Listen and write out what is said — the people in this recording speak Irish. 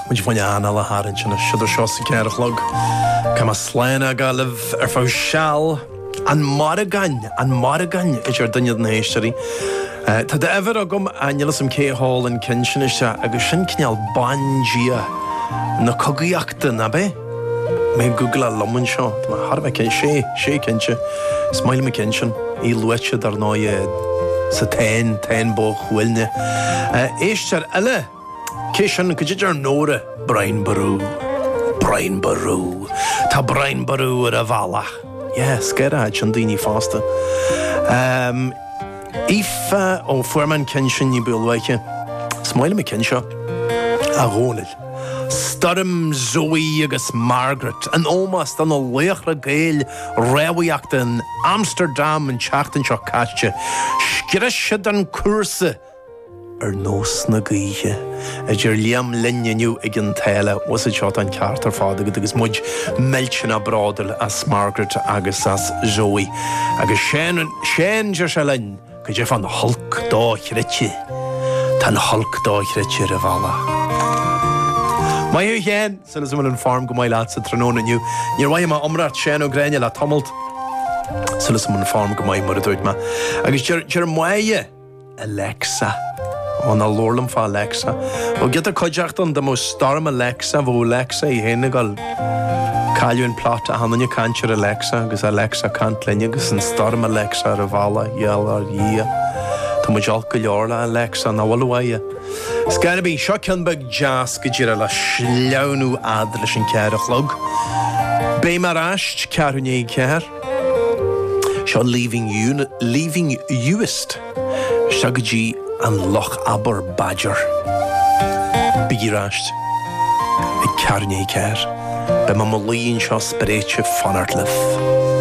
Muid ag gabháil anáil a tharraingt anois idir seo is an ceathair a chlog. Tá mé slán á gabháil libh ar feadh seal. An Mórrígan, An Mórrígan a deir duine de na héisteoirí. Tá d'uimhir agam, níl 'fhios a'm cé a sheol an ceann sin isteach, agus sin cineál bandia na cogaíochta, nab ea? mé ag googleáil liom anseo. Tá thar a bheith cinnte. Sé, sé cinnte. Is maith liom an ceann sin. Í luaite, dar ndóigh, sa Táin, Táin Bó Cuailgne. Éisteoir eile cé sin caidé a deir Nóra. Brian Boru. Brian Boru. Tá Brian Boru ar a bhealach. Yeah, scanródh sin daoine fosta. Aoife ó fuair mé an ceann sin ní ba luaithe. Is maith liom an ceann seo, a Dhónaill. Stoirm Zoë agus Margaret, in ómós do na laochra Gael rámhaíochta in Amsterdam an tseachtain seo caite, scrios siad an cúrsa ar nós na gaoithe, a deir Liam linn inniu ag an tSáile, was it, seo atá an ceart ar fad agat, agus muid millteanach bródúil as Margaret agus as Zoë. Agus Seán, Seán, deir sé linn. Go deimhin, an Hulk dochreidte, tá an Hulk dochreidte ar a bhealach. Maith thú, a Sheáin! Súil agam go bhfuil an form go maith leat sa tráthnóna inniu. Níor mhoithigh mé iomrá ort, Seán Ó Gráinne, le tamalt. Súil agam go bhfuil an form go maith, mar a dúirt mé. Agus deir, deir Maia, Alexa. Ó, ná labhair liom fá Alexa. Ó, giota cuideachta dá mbeadh Storm Alexa, bheadh Alexa í féin ag gol. Cailleadh an plot achan duine ag caint ar Alexa agus Alexa ag caint linn agus an stoirm Alexa ar a bealach, i ngeall ar Dhia. Tá muid olc go leor le Alexa nach bhfuil uaidh é. Ar scor ar bith, seo ceann beag deas go díreach le sleamhnú fhad leis an ceathair a chlog. Beidh mé ar ais, ceathrú i ndiaidh a ceathair. Seo Leaving Uist. Isteach go dtí an Lochaber Badger. Bígí ar ais ag ceathrú i ndiaidh a ceathair, beidh mé i mo luí anseo spréite ag fanacht libh.